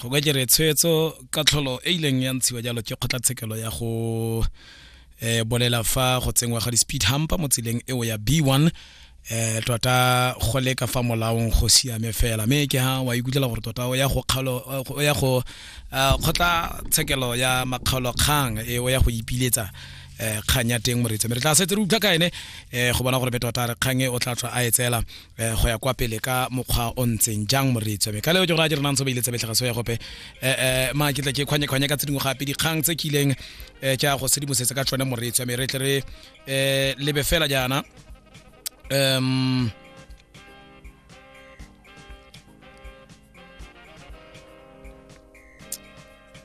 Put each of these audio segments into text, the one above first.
go ka kere tshwetso ka tlholo e ileng ya ntshiwa jalo ke kgotlatshekelo ya go eh bolela fa go tsengwa ga di-speed humper mo tseleng eo ya b one eh tota go leka fa molaong go siame fela mme ke ha wa ikutlwela gore tota o ya go kgalo o ya go ah, kgotla tshekelo ya makgaolo kgang e o ya go ipiletsa eh kgang ya teng moreetsa mme re tla setse re utlwa ka ene eh go bona gore be tota re kgang e o tla tswa a e tseela eh go ya kwa pele ka mokgwa o ntseng jang moreetswa me ka leo ke gore a direnang tso ba ile tsa betlhaga so ya gope eh, eh ma ke tla ke kgwanye kgwanye ka tse dingwe gape dikgang tse kileng eh tsa go sedimosetsa ka tsone moreetswa me re tle re eh lebe fela jaana um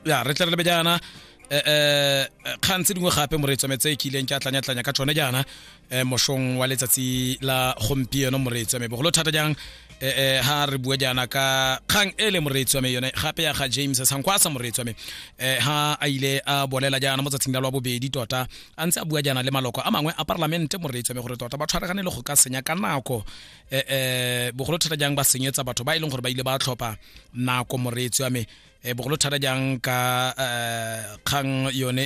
ya re tle re lebe jaana eh, eh, kgang tse dingwe gape moreetso me tse e kileng ke a tlanyatlanya ka tsone jaana eh, mosong wa letsatsi la gompieno moreetso me bogolo thata jang eh, ha re bua jaana ka kgang e le moreetso me yone gape ya ga james sankwasa moreetso me eh, ha a ile a bolela jaana mo tsatsing la lwa bobedi tota a ntse a bua jaana le maloko a mangwe a parlamente moreetso me gore tota ba tshwaragane le go ka senya ka nako eh, eh, bogolo thata jang ba senyetsa batho ba e leng gore ba ile ba tlhopha nako moreetsi wa me eh, bogolo thata jang ka eh, kgang yone